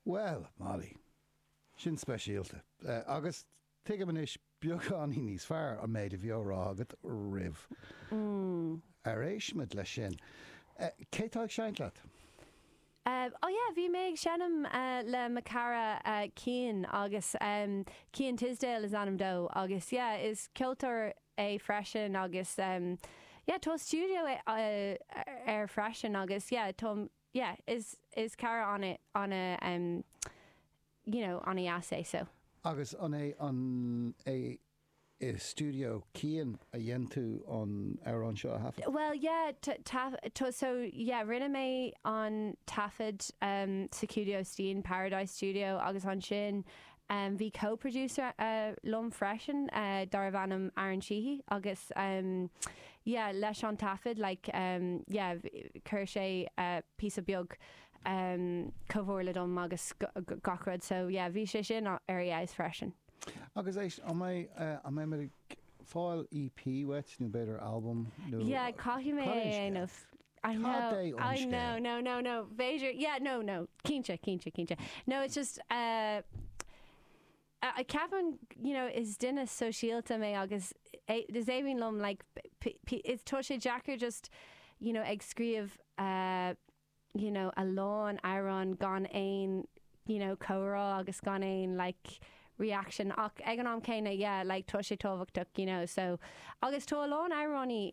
Bhuel, Molly, sin speisialta. Agus tuigim anois beagán níos fearr an méid a bhí á rá agat roimh gur éist muid leis sin. Cé atá ag seinnt leat? Ó yeah, bhí mé ag seinm le mo cara Cian agus Cian Tisdale is ainm dó agus yeah is ceoltóir é freisin agus yeah tá stiúideo aige freisin agus yeah tá yeah is is cara ana ana you know ana dheas é so. Agus an é an é i stiúideo Cian a dhéan tú an amhrán seo a thaifead? Bhuel yeah tá so yeah rinne mé an taifead um, sa stiúideo Cian, Paradise Studio agus ansin Bhí co-producer liom freisin darbh ainm Aaron Sheehy agus yeah leis an taifead like yeah chuir sé píosa beag comhairle dom agus gach rud so yeah bhí sé sin ar fheabhas freisin. Agus éist, an mbeidh, an mbeidh muid ag fáil EP uait nó b'fhéidir albam nó? Yeah caithfidh mé é a dhéanamh. I know, cad é an scéal? I know, no, no, no, b'fhéidir, yeah, no, no, cinnte, cinnte, cinnte. No, it's just, uh, uh, ceapaim, you know, is duine sóisialta mé agus é- is éiríonn liom, like, p- p- is tá sé deacair just, you know, ag scríobh, uh, you know, a lán amhrán gan aon, you know, comhrá agus gan aon, like, reaction ach ag an am céanna, yeah, like, tá sé tábhachtach, you know, so, agus tá a lán amhráin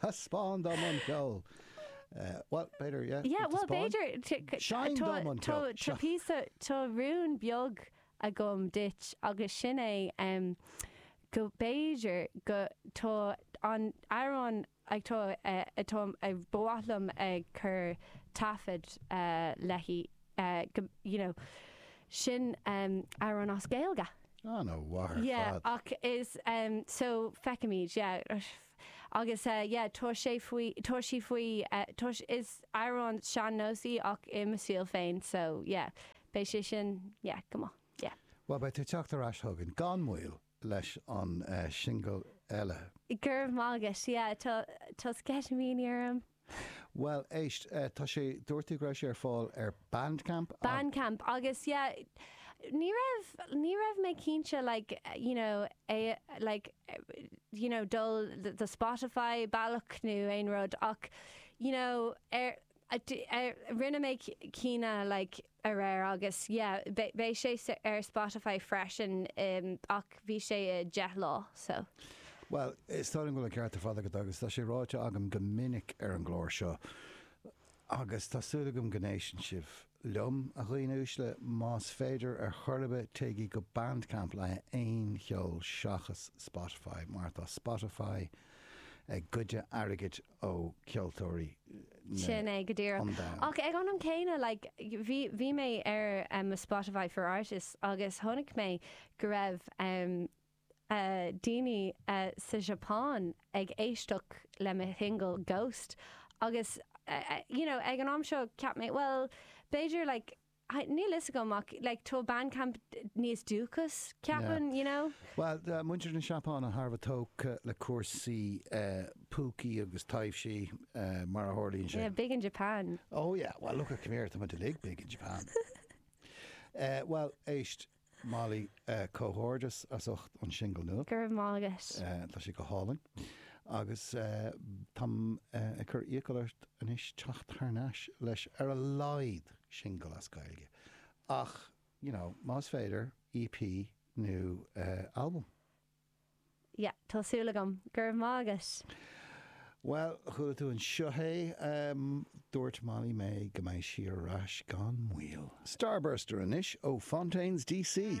Taispeáin dom an ceol! Bhuel, b'fhéidir, yeah. Yeah, bhuel, b'fhéidir. Seinn dom an ceol! Tá píosa, tá rún beag agam duit agus sin é go b'fhéidir go, tá an amhrán ag tá, atá, ba mhaith liom ag cur taifead léi, go, you know, sin amhrán as Gaeilge. An-mhaith ar fad. Yeah, ach is, so, feicimid, yeah. Agus yeah tá sé faoi, tá sí faoi, tá sí, is amhrán sean-nós í ach i mo stíl féin so yeah beidh sé sin yeah go maith yeah. Bhuel beidh tú ag teacht ar ais chugainn gan mhoill leis an singil eile. Go raibh maith agat, yeah tá, tá sceitimíní orm. Bhuel, éist, tá sé, dúirt tú go raibh sé ar fáil ar Bandcamp. Bandcamp agus yeah, ní raibh, ní raibh mé cinnte like, you know, é like, you know, dul the Spotify bealach nó aon rud ach, you know, ar, ar, rinne mé cinneadh like, aréir agus yeah beidh sé ar Spotify freisin ach bhí sé a 10 lá so. Bhuel, is dóigh liom go bhfuil an ceart ar fad agat agus tá sé ráite agam go minic ar an gclár seo agus tá súil agam go n-éisteann sibh liom, a dhaoine uaisle, más féidir ar chor ar bith téigí go Bandcamp le haghaidh aon cheoil seachas Spotify mar tá Spotify ag goid airgid ó cheoltóirí. Sin é, go díreach. Ach ag an am céanna, like, bhí, bhí mé ar em, mo Spotify for Artists agus chonaic mé go raibh em, eh, daoine eh, sa tSeapáin ag éisteacht le mo shingil Ghost agus eh, eh, you know, ag an am seo, cheap mé, bhuel, b'fhéidir, like, Níl a fhios agam ach like tá Bandcamp níos dúchasaí, ceapaim, you know? Bhuel, tá muintir na Seapáine thar a bheith tógtha le cúrsaí púcaí agus taibhsí, mar a tharlaíonn sé. Yeah, big in Japan. Oh yeah, well look at come here, táimid uilig big in Japan. Bhuel, éist, Molly, Comhghairdeas as ucht an singil nua. Go raibh maith agat. Tá sé go hálainn. Agus táim ag cur iachall ort anois teacht thar n-ais le ar a laghad singil as Gaeilge. Ach, you know, más féidir, EP nó albam. yeah tá súil agam. Go raibh maith agat! Bhuel, chuala tú anseo é, dúirt Molly May go mbeidh sí ar ais gan mhoill. Starburster anois ó Fontaines DC.